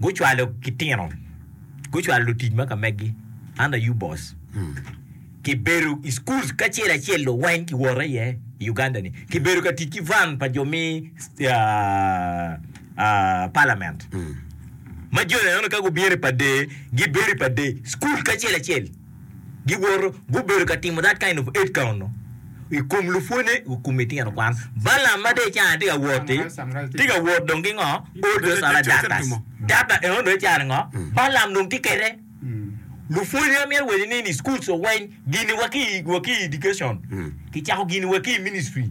Gucwalo kitino, gucwalo lutic ma ka megi, an aye boss. Kibedo i schools kacel acel lo weng kiwot aye i Uganda ni. Kibedo ka tic ki van pa jo mi ah, ah, parliament. Ma joni aneno ka gubino i pa day, gibedo i pa day, school kacel acel. giwoto, gubedo ka timo that kind of aid count i kom lupwonye i kom litino kwan. Balaam ma dong i caro-ni tye ka wot-ti, tye ka wot dong ki ngo? Odo calo doctors. Doctor eno dong i caro-ni ngo? Balaam dong tye kede. Lupwonye amyero wacci ni in i schools oweny giniwa ki i education, kicako giniwa ki i ministry.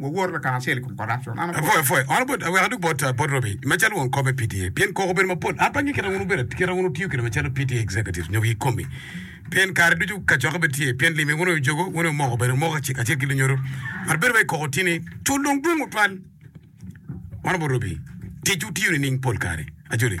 Wawor lakana-acel i kom corruption. An apwoyo. Apwoyo. Ono bot aweka duk bot bot Robi macalo won kop me PTA pien koko bedo mapol an pe ange kite wun wubedo kite wun wutiyo kede macalo PTA executives nyo gi komi pien kare ducu kacokke bed tye pien limi wun ojogo wun omoko bedo omoko kacel kacel ki lunyodo but bedo wai koko tye ni cul dong dwong otwal ono bot Robi tic wutiyo nining pol kare ajoli.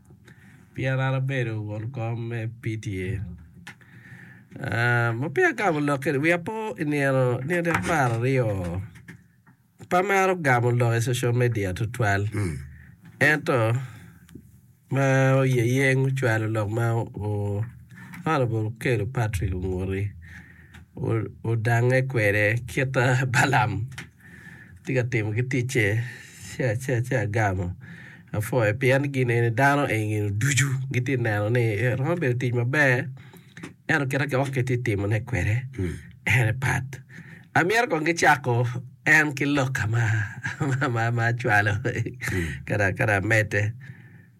pien an abedo won kom me PTA. Ma peya agamo lok kede wiya po i nino nino apar aryo pe amaro gamo lok i social media tutwal ento ma oyeyeng ocwalo lok ma Honorable Okello Patrick Onguti odangnge kwede kita Balam. tye ka timo ki ticce ci agamo apwoyo pien gin eni dano eni ducu gitye ka neno ni romo bedo tic maber ento kit ma kiongo kitye ka timone kwede en pat amyero kong gicako en ki loka ma acwalo kara amedde.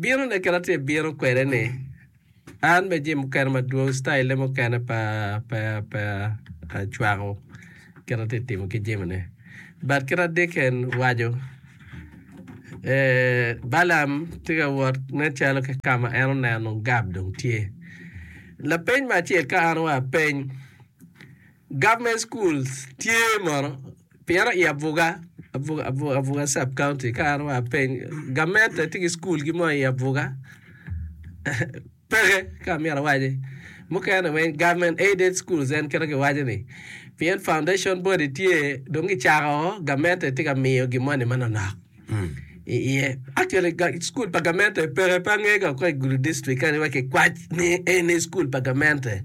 bino ne kit atye bino kwede ni an me jami mukene madwong style ne mukene pa pa pa acwako kit atye timo ki jami ne but kit adicken waco balam tye ka wot ne calo ki kama en oneno gab dong tye lapeny me acel ka an wa apeny government schools tye mono Pire i abuga abuga sub county ka an wa apeny gamente tye ki school gi mo i abuga peke ka amyero awaci mukene weng government aided schools en kite ki waco ni pien foundation body tye dong gicako gamente tye ka miyo gimoni manonok. Cukul pa gamente peke pe angega woko i gudi dictrict kadi wa kikwac ni eni cukul pa gamente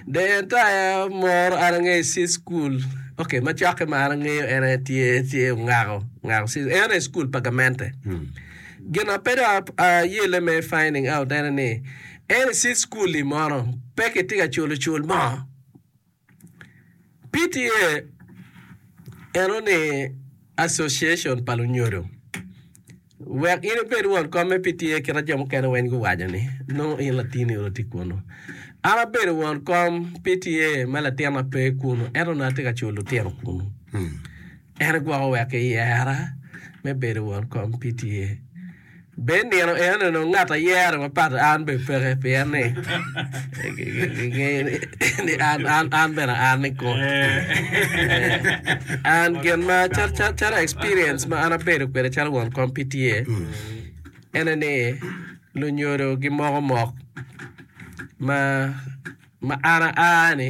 the entire moro an angeyo i sis cukul ok macoki ma an angeyo en aye tye tye ongako ongako sis en aye cukul pa gamente gina pe dong ayele me finding out ene ni eni sis cukul-li moro pe kitye ka culo cul mo PTA eno ni Association pa lunyodo. Wek in ibed won kom me PTA kit ma jo mukene weng guwaco ni, nongo in latin eni tye kunu. An abedo won kom PTA me latina pe kunu ento nongo atye ka culo lutino kunu. En gwoko wek kiyera me bedo won kom PTA. Be i nino enoni onongo ngat ayere mapat? An bene peke, pien ni gingeyo ni an bene an ni kong. An gin ma calo experience ma an abedo kwede calo won kom pi tye ene ni lunyodo gimoko mok ma an aa ni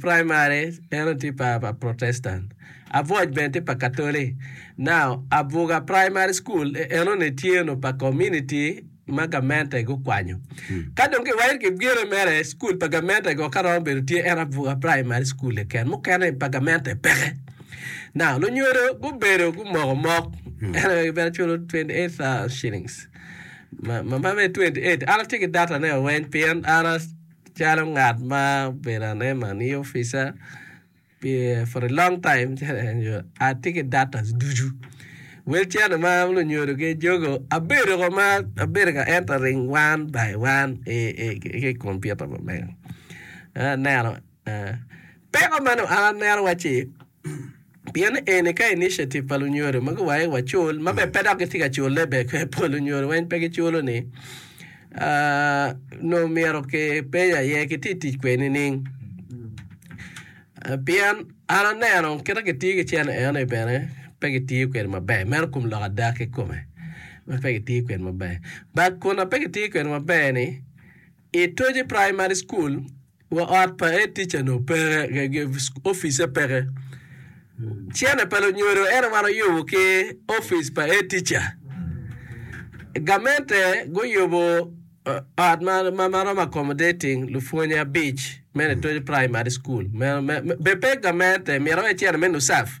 Primary en aye tye pa protestant Abuoc bene tye pa katolik now Abuga primary school enoni tye onongo pa community ma gamente gukwanyo ka dong kiwaco ki gine mere school pa gamente go ka romo bedo tye en Abuga primary school keken mukene pa gamente peke now lunyodo gubedo gumoko mok en aye gibene culo 28,000 shillings ma ma bene 28 an atye ki datane weng pien an Calo ngat ma obedo anema ni opica for a long time atye ki datas ducu wel cene ma lunyodo gi jogo abedo ko ma abedo ka entering one by one ki computer ma mega aneno. Peko man oa nera wacci, pien eni ka initiative pa lunyodo ma guwayo wa cul ma bene pe dok gitye ka culle be kwe pol lunyodo weng pe giculo ni nongo myero ki peny aye ki ti tic kwe nining? Pien an aneno kita ki tiyo ki cene eno ni bene pe ki tiyo kwede maber meno kum lok ada ki kome ma pe ki tiyo kwede maber but kun ape ki tiyo kwede maber ni itoji primary school Wa ot pa head teacher noo peke office peke cene pa lunyodo ento wan oyubo ki office pa head teacher gamente guyubo ot ma romo accommodating lupwony abic me Litojo primary school bene pe gamente myero wai cene me nucaf.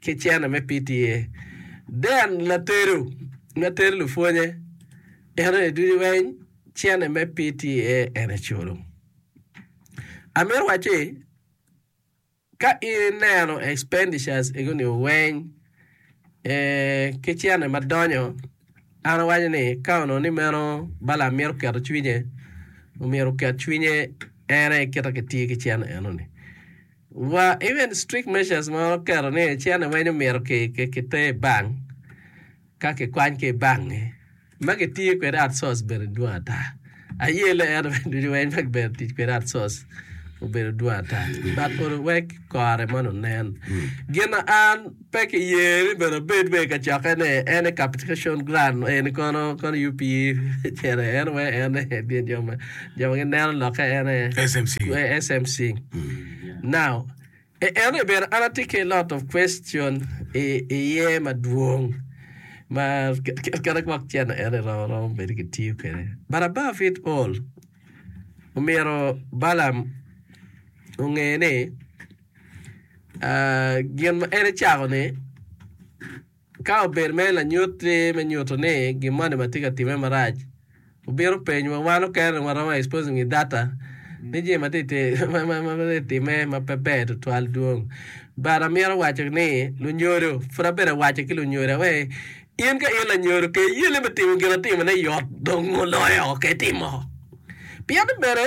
ki cene me PTA. Dean Latedo ma ter lupwonye eno ni ducu weny cene me PTA en eculo. Amito waco ni ka ineno expenditures ego ni weny ki cene ma donyo an awaco ni ka onongo ni meno bala mito keto cwinye omyero oket cwinye en aye kite kitye ki cene eno ni. Wa even strict measures ma oketo ni cene weng omyero ki ter i bank ka ki kwany ki i bank ni ma ki tiyo kwede at source bene dwong ata aye le ento bene ducu weng ma ki bene tic kwede at source obedo dwong ata but oru wek kore moni onen gin ma an Pe ki ye ni bene obed be ka coke ne en e captication ground eni kono kono yup yi cene en we en e dye jo ma jo ma gineno loke en e SMC. we SMC. Now, e- en e bene an atye ki lot of question i iye madwong ma ke- ke- kene gwok cene en e romo romo bedo ki tiyo kwede. But above it all, omyero Balaam onge ni gin ma en ecako ni ka obedo mere lanyut me nyuto ni gin moni ma tye ka time marac obino penyo wa wan okene dong waromo exposing i data ni jami ma tye ka time ma pe ber tutwal dwong but amito waco ni lunyodo pud abydo ka waco ki lunyodo ni in ka in lanyodo ke iyeni me timo gin atimone yot dong muloyo ke itimo pien ni bene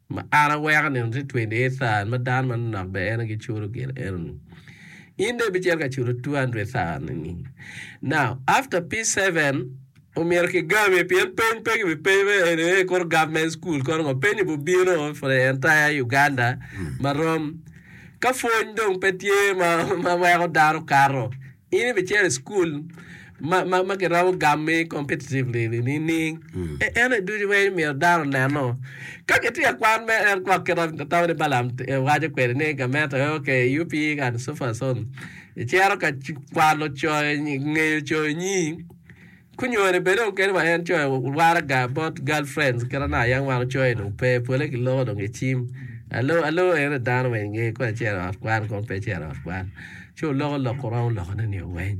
Ma an aweko nino tye twenty eight thousand ma dano manonok bene en aye gicuto gin eno ni. In dong ibicito ka cuto two hundred thousand ni. Now after P seven omyero kigami pien peny pe kibipenyo me eni ee kono government school kono ngo. Peny obi bino for the entire Uganda ma rom. Ka pwony dong pe tye ma weko dano kato. In ibicero i cukul ma, ma, ma giromo gammi competitively nining? E- Ene ducu ma in myero dano oneno. Ka kitye ka kwan me en gwok kit ma tamo ni Balaam t- eh, waco kwede ni gameta eh, ok eh, UP and so far so on. Icero ka c- kwano coyo nyi- ngeyo coyo nyi. Kunyone bene dong kadi wa en coyo waraga bot girl friends kit ana yam wan ocoyo dong pe pole ki loko dong ecim alo alo en aye dano ma inge kong ecito i ot kwan kong pe ecito i ot kwan ci oloko lok ko romo loko ne nio weng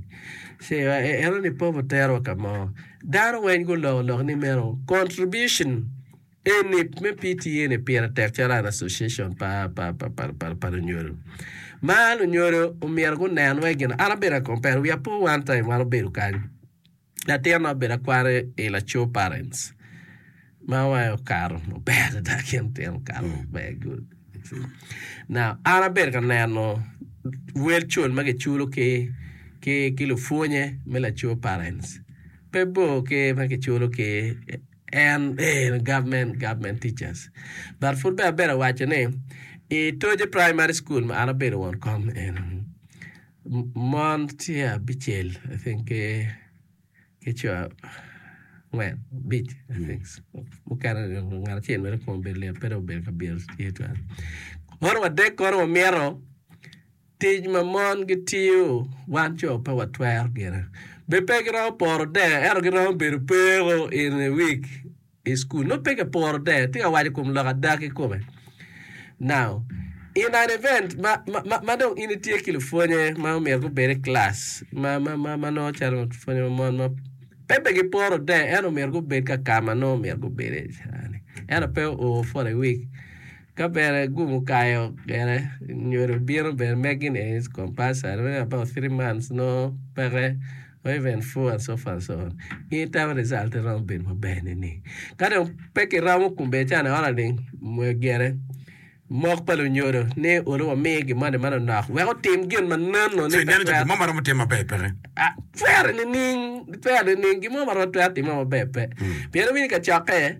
ci wa enoni pop otero wa kamo dano weng guloko lok ni meno contribution Eni me PTA ni pire tek calo an association pa pa lunyodo. Ma lunyodo omyero gunen wai gin an abedo a compare we are poor one time wan obedo kany latin na obedo akware i laco parents ma wai okato maber adada kin tino okato maber good. Now an abedo ka neno wel cul ma kiculo ki ki ki lupwonye me laco parents pe bor ki ma kiculo ki En ee government government teachers but pud bene abedo awaco ni i Toje primary school ma an abedo won kom eno mon tye abicel I think ki ki co angwen abic I think so mukene ngat acel mere kong obedo lit pe dong obedo ka byelo tye twal kono wadek kono wamito Tic ma mon gitiyo wan co pe watwero gine. Bed pe giromo poro der ento giromo bedo peko in a week i school. Nongo pe ki poro der. Atye ka waco kom lok ada ki kome. Now, in an event ma, ma, ma, ma dong in itye ki lupwonye ma omyero gubed i class ma, ma, ma, ma nongo calo lupwonye ma mon ma pe be giporo der ento omyero gubed ka ka ma nongo omyero gubede cani. Ento pe o for a week. Ka bene gum okayo gene nyodo bino bene megi ni is compulsory maybe about three months no peke or even four and so far and so on in term result iromo bedo maber nining? Ka dong pe kiromo kun bene can aona ling gene mok pa lunyodo ni olu wamiye gin moni ma nonok wek otim gin ma nonno ni Ineno jami mo ma romo timme maber peke? Ah, twere nining twere nining gin mo ma romo twero timme maber pe pien obino i kacokke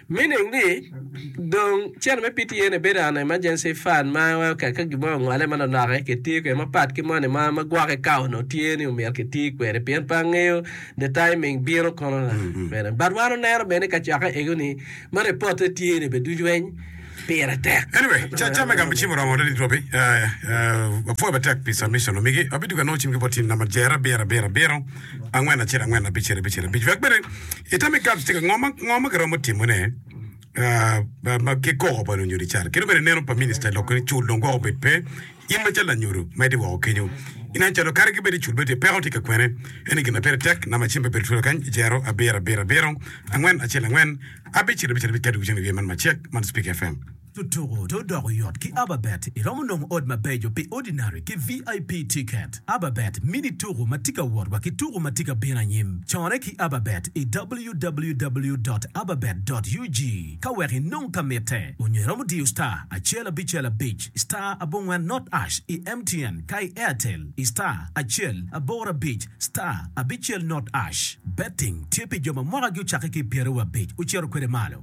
Meaning ni dong cene me PTA ni bedo an emergency fund ma wai okek ka gin mo ongole ma lonoke ki tiyo kwede ma pat ki money ma ma gwoke ka onongo tye ni omyero ki ti kwede pien pe angeyo the timing bino kono la bene but wan oneno bene ni ka cokke ego ni ma report ne tye ni be ducu weny pire tek. Anyway, ca ca me gamo cim oromo adada it wa pi apwoyo matek pi submission omigi. Abiduka nongo cim ki bot in namba jere abiro abiro abiro. angwen acel angwen abicel abicel abic wek bene itam igac tika ngo ma ngo ma kiromo timone ah, ba- ba- ki koko pa lunyodo ical kino bene neno pa minista lok ni cul dong gwoko bed pe in ma cal lanyodo ma iti woko kenyo inen calo kadi ki bed icul bed tye peko tye ka kwene eni gin ma pire tek nama cim pe bedo twolo kany ijero abiro abiro abiro angwen acel angwen abicel abicel abic kadi wicen i wiye man macek man speak fm Tutuku to doko yot ki Ababet iromo nongo ot mabeco pi Ordinary ki VIP tiket. Ababet mini tuku ma tye ka wot wa ki tuku ma tye ka bino anyim. Corre ki Ababet i www dot ababet dot ug ka wek inong ka mitte onyo iromo diyo star acel abicel abic star abongwen not ash i MTN ka i Airtel i star acel aboro abic star abicel not ash. Betting tye pi jo ma mwakagi ocakke ki i pyeraryo abic ocito kwede malo.